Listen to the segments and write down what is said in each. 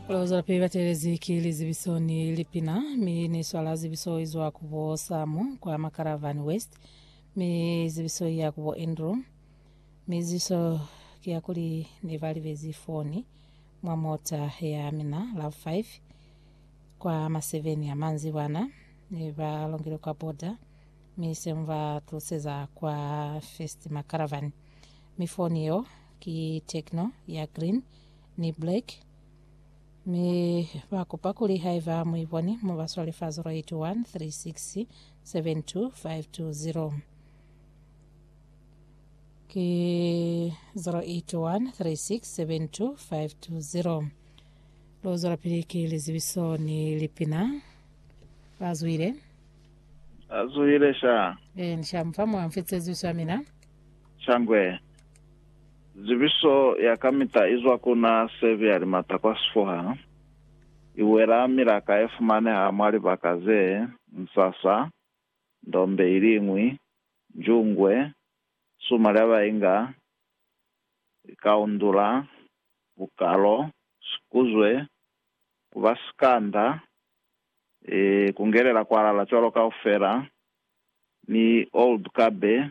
Lozwelapili batelezi ki lizibiso ni lipina, mi niswala zibiso izwa kubo Samu kwa Macaravan West, mi zibiso iya kubo Andrew, mi zibiso kiyakuli nebalibezi foni mwa mota yamina love 5 kwa ma 7 ya manzibwana, nebalongile kwa border, mi semubatuluseza kwa First Macaravan, mi foni yo ki Tecno ya green ni Black, mi ba kupa kuli haiba mu iboni mu ba swale fa 081 3672520. Ki 081 3672520. Lu zwelapili ki lizibiso ni lipina. Ba zwile? Azuhile sha. Eh, ni sha mufa mwa mfitse zibiso ya mina. Shangwe. Zibiso ya kamita izwa ku na sebi ya limata kwa sifuha, iwela milaka e fumaneha mwa libaka ze, nsasa, ndombe iliñwi, njungwe, suma lya bainga, likaundula, bukalo, sikuzwe, kuba sikanda, e, kungelela kwalala cwalo kaufela, ni old kabe,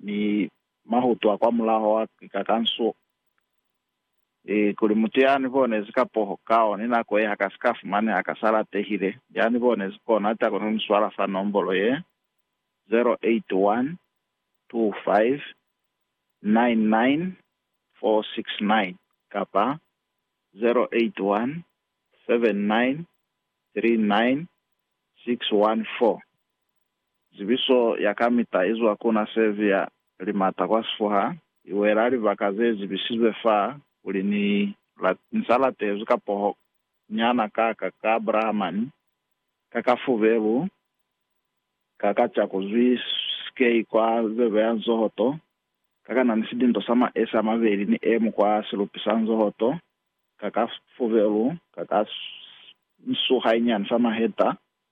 Mi mahutu a kwamulaho a kika ka nso, e, kuli mutu ya ni bonezi ka poho kao ni nako ye ha ka si ka fumaneha ka sa latehile, ya ni bonezi kono a ta koni ku ni swala fa nombolo ye, 0812599469 kapa 0817939614. Zibiso ya kamita izwa ku na sevi ya limata kwa sifuha, iwela libaka ze zibisizwe fa kuli ni la, ni sa latezwi ka poho nyana ka ka ka Abrahamani, ka ka fubelu, ka ka ca kuzwi sikei kwa zebe ya nzohoto, ka ka na ni sidinto sa maesi a mabeli ni emu kwa silupi sa nzohoto, ka ka fubelu, ka ka nsuha inyani sa maheta.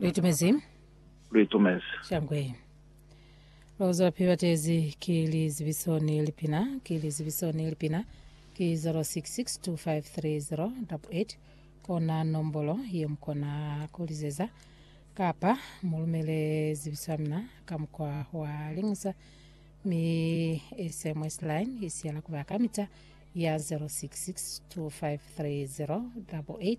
Luitumezi. Luitumezi. Shangwe. Lozwa piwa tezi ki lizibiso ni lipina, ki lizibiso ni lipina, ki 0662530088 kona nombolo ye mukona kulizeza, kapa mulumele zibiso ya mina ka mukwa wa lingusa, mi SMS line isiyela kuba kamita ya 0662530088.